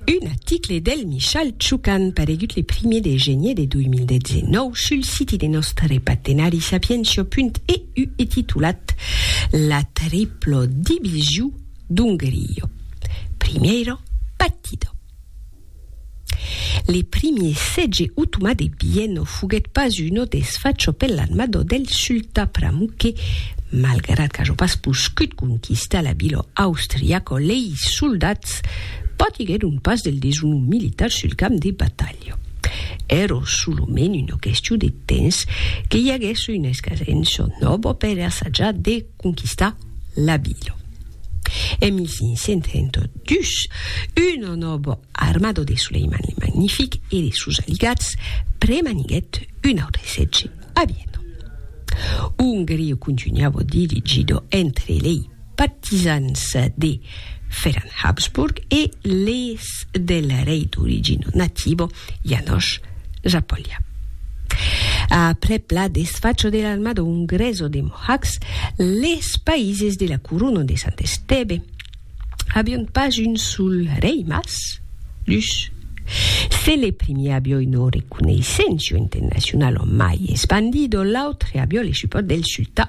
Un article del Michal Tchukan paregut le primier de genier de 2019 sul siti de nòstre partenari sapientia.eu e titulat La triplo division d'un grillo. Primiero partido. Le primier sètge otomà de Bienno foguèt pas uno desfacho per l'armada del sultan Pramuk que, malgrat qu'ajo pas poscut conquistar la vila austriaca, lei soldats patiguèron pas del deshonor militar sul camp de batalha. Èra solament una question de temps que i aguèsse una escasença nòva per assajar de conquistar la vila. En 1502, un nobo armado de Suleiman le Magnific e de sos aligats premaniguèt un autre sètge a Viena. Ongria contunhava dividida entre lei partisans de Ferran Habsburg e les del rei d'origina nativa János Zápolya. A prepla desfacho de l'armada ungreso de Mohács, les païses de la Corona de Sant Esteve avion pas un sol rei mas dus. Se le primier avió una reconeissenço internacionala mai espandido, l'autre avió le supòrt del sultan.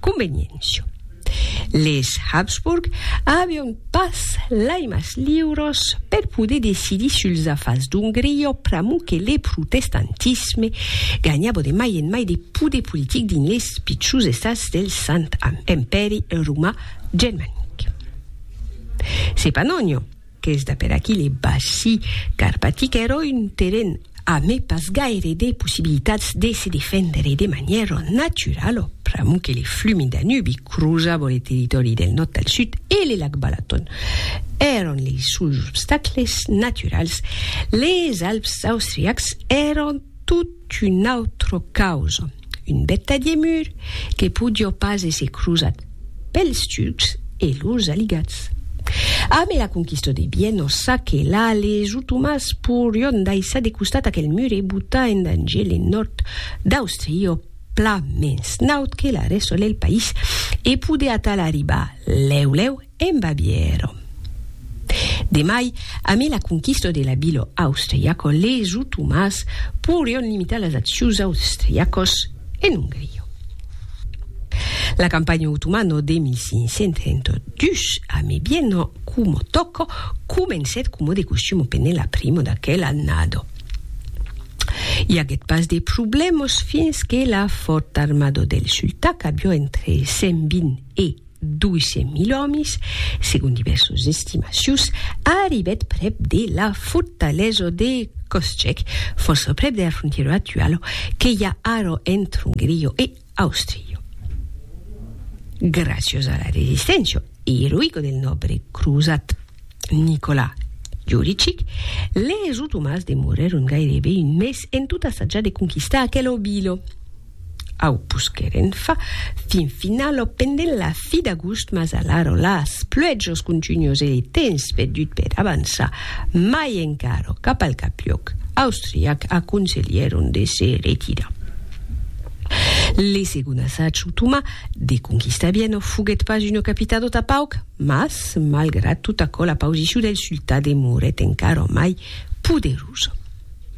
conveniéncia. Les Habsburg avion pas lai mas liuros per poder decidir suls afars d'Ongria pr'amor que le protestantisme ganhava de mai en mai de poder politic dins les pichons estats del Sant Empèri Romà Germanic. Sepanonho, qu'es d'aper aquí le Bassi Carpatic ero un terren ame pas gaire de possibilitats de se defendre de manièra naturalo pr'amor que le flumi Danubi crosavo le territòri del nòrd al sud e le lac Balaton èron lei suls obstacles naturals. Les Alps austriacs èron. Tot un autre caus, un betadier mur que podió pas èsser crosat pels turcs e lors aligats. Amé la conquista de Bièno, Saquelà, les otomans porion daissar de costat aquel mur e botar en danger le nòrd d'Austria pla mens naut que la rèsta lel país e poder atal arribar lèu lèu En Babièro. De mai, amé la conquista de la vila austriaca, les otomans poirion limitar las accions austriacas en Ongria. La campanha otomana de 1532, amé Viena coma tòca, comencèt coma de costum pendent la prima d'aquela annada. I aguèt pas de problèmas fins que la fòrta armada del sultà, qu'aviá entre 120 e. 200.000 òmis, segon divèrsas estimacions, arribèt prèp de la fortalesa de Koschek, fòrça prèp de la frontièra actuala que i a ara entre Ongria e Àustria. Gràcias a la resisténcia eroïca del nòbre crosat Nicolas Juricic, les otomans demorèron gaireben un mes en tot assatjar de conquistar aquela vila. Au posquèren far fin finalo pendent la fi d'agost mas alaro las pluèjos contunhos e le temps perdut per avançar mai encaro cap al capiòc austriac aconselhèron de se retirar. Le segond assatge otomà de conquistar Viena foguèt pas una capitado tà pauc mas malgrat tot aquò la pausicion del sultà demorèt encara mai poderosa.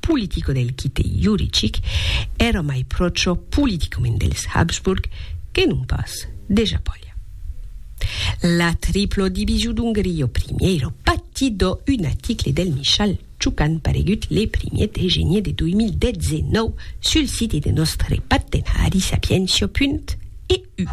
politico del quite juricic, èra mai pròcho politicament dels Habsburg que non pas de Japòlia. La triplo division d'Ongria au primièro pati dò un aticle del Michal Ciucan paregut le primier de genier de 2019 sul site de nòstre pattenhari sapientia.eu.